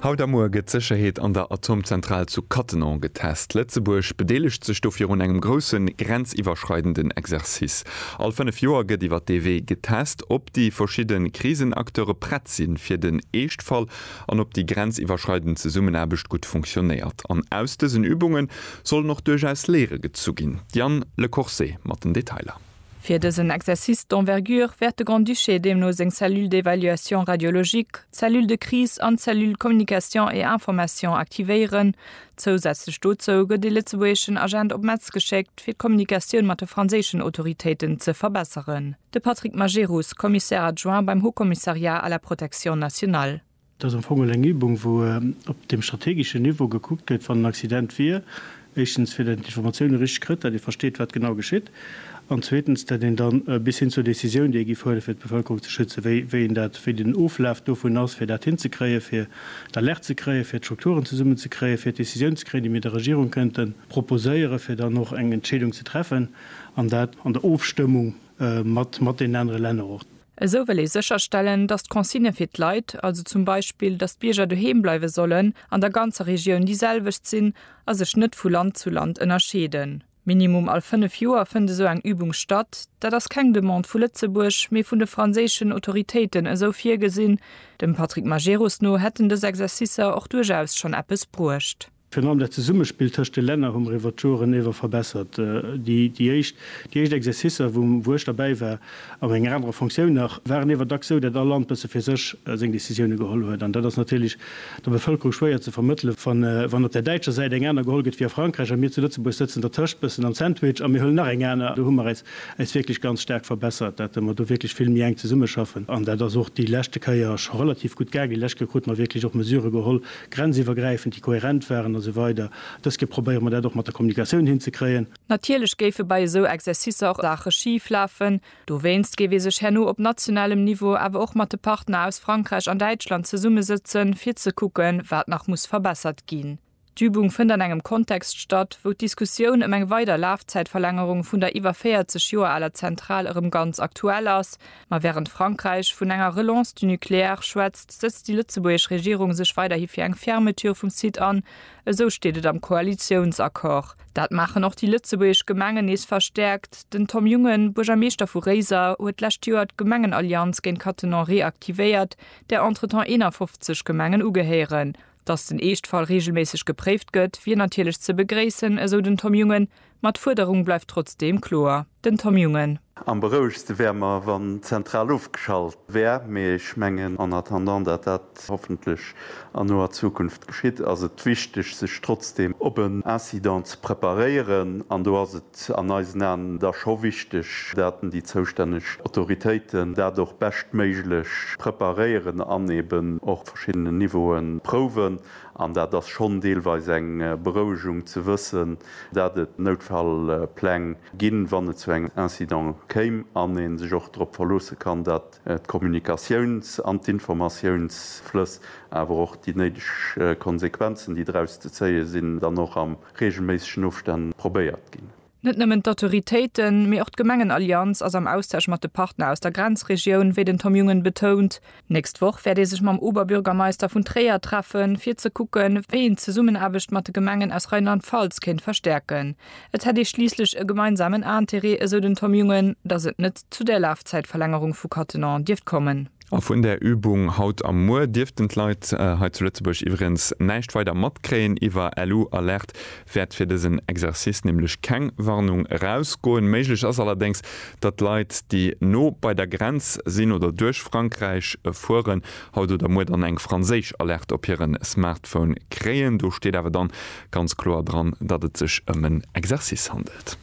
Haut a muer gëtt d'Sécherheet an der Atomzentral zu Cattenom getest. Lëtzebuerg bedeelegt sech do virun engem grousse grenziwwerschreidenden Exercice. All fënnef Joer gëtt iwwer dee Wee getest, ob déi verschidde Krisenacteure prett si fir den Eeschtfall an ob déi grenziwwerschreidend Zesummenaarbecht gutt funktionéiert. An aus dësen Übunge sollen och duerchaus Léiere gezu ginn. D'Diane Lecourcé mat den Detailer. Fir dësen Exercice d'envergure wäert de Grand-Duché deemno seng Cellule d'évaluation radiologique, d'Cellule de crise an d'Cellule communication et information aktivéieren. Zousätzlech dozou gëtt ee lëtzebuergeschen Agent op Metz geschéckt, fir d'Kommunikatioun mat de franséischen Autoritéiten ze verbesseren. De Patrick Majerus, Commissaire adjoint beim Haut-Commissariat à la protection nationale. Et ass am Fong elo eng Übung, wou op deem strategeschen Niveau gekuckt gëtt, wann en Accident wier, éischtens, fir datt een d'Informatioune richteg kritt, datt ee versteet, wat genau geschitt, an zweetens, datt een da bis hin zur Décisioun, déi ee giff huelen, fir d'Bevëlkerung ze schützen, wéi, wéi een dat, wéi den Oflaf dovun ass, fir dat hinzekréien, fir d'Alerte ze kréien, fir d'Strukturen zesummenzekréien, fir d'Décisioun ze kréien, déi mir der Regierung kënnte proposéieren, fir dann och eng Entscheedung ze treffen, an dat an der Ofstëmmung mat, mat deenen anere Länner och. Esou wëll ee sécherstellen, datt d'Consigne fir d'Leit, also zum Beispill, datt d'Bierger doheem bleiwe sollen, an der ganzer Regioun déi selwecht sinn a sech net vu Land zu Land ënnerscheeden. Minimum all fënnef Joer fënnt esou eng Übung statt. Dat ass keng Demande vu Lëtzebuerg, mee vun de franséischen Autoritéiten esou virgesinn. Dem Patrick Majerus no hätten dës Exercicer och duerchaus schonn eppes bruecht. Virun allem dat Zesummespill tëscht de Länner hu mer iwwert d'Joren ewer verbessert. Déi éischt Exercicer, wou ech derbäi war, a menger anerer Fonctioun nach, waren ewer dacks esou, dat all Land bësse fir sech seng Décisioune geholl huet. An dat ass natierlech der Bevëlkerung schwéier ze vermëttele wann op där däitscher Säit eng aner geholl gëtt wéi a Frankräich a mir zu Lëtzebuerg sëtzen dertëscht, bëssen am Sandwich, a mir huelen nach eng aner. Do hu mer äis wierklech ganz staark verbessert, dat mer do wierklech vill méi enk zesummeschaffen. An dat ass och déi leschte Kéier scho relativ gutt gaangen. Déi lescht Kéier krute mer wierklech och Mesurë geholl, grenziwwergräifend, déi kohärent waren a sou weider Dës Kéier probéiere mer dat och mat der Kommunikatioun hinzekréien. Natierlech géife bei esou Exercicer och Saache schif lafen. Dowéinst géif ee sech herno op nationalem Niveau awer och mat de Partner aus Frankräich an Däitschland zesummesëtzen, fir ze kucken, wat nach muss verbessert ginn. D'Übung fënnt an engem Kontext statt, wou d'Diskussioun ëm eng weider Lafzäitverlängerung vun der iwwer 40 Joer aler Zentral erëm ganz aktuell ass, Ma wärend Frankräich vun enger Relance du nucléaire schwätzt, sëtzt déi lëtzebuergesch Regierung sech weiderhi fir eng Fermeture vum Site an. Esou steet et am Koalitiounsaccord. Dat maachen och déi lëtzebuergesch Gemengen nees verstäerkt. Den Tom Jungen, Buergermeeschter vu Réiser, huet d'lescht Joer d'Gemengenallianz géint Cattenom reaktivéiert, där entretemps 51 Gemengen ugehéieren. Datt den Eeschtfall reegelméisseg gepréift gëtt, wier natierlech ze begréissen, esou den Tom Jungen. Ma d'Fuerderung bleift trotzdeem kloer. Den Tom Jungen. Am berouegste wäre mer, wann d'Zentral ofgeschalt wär. Mee ech mengen, en attendant dat dat hoffentlech an noer Zukunft geschitt, ass et wichteg, sech trotzdeem op en Incident ze preparéieren. An do ass et an eisen Aen da scho wichteg, daten déi zoustänneg Autoritéiten dat och beschtméiglech preparéieren an eben och op verschiddenen Niveauen prouwen. An dat ass schonn deelweis eng Berouegung ze wëssen, dat et Noutfallpläng ginn, wann et zu engem Incident kéim, an ee sech och drop verloosse kann, dat d'Kommunikatiouns an d'Informatiounsflëss, awer och déi néideg Konsequenzen, déi draus ze zéie sinn, dann och a reegelméissegen Ofstänn probéiert ginn. Net nëmmen d'Autoritéiten, mee och d'Gemengenallianz ass am Austausch mat de Partner aus der Grenzregioun, wéi den Tom Jungen betount. Nächst Woch wäert ee sech mam Oberbürgermeister vun Tréier treffen, fir ze kucken, wéi een d'Zesummenaarbecht mat de Gemengen aus Rheinland-Pfalz kéint verstäerken. Et hätt ee schliisslech e gemeinsamen Interêt, esou den Tom Jungen, datt et net zu där Lafzäitverlängerung vu Cattenom dierft kommen. A vun där Übung haut a muer dierften d'Leit hei zu Lëtzebuerg iwweregens näischt weider matkréien. Iwwer LU-Alerte wäert fir dësen Exercice nämlech keng Warnung erausgoen. Méiglech ass allerdéngs, datt Leit, déi no bei der Grenz sinn oder duerch Frankräich fueren, haut oder muer dann eng franséisch Alerte op hire Smartphone kréien. Do steet awer dann ganz kloer dran, datt et sech ëm en Exercice handelt.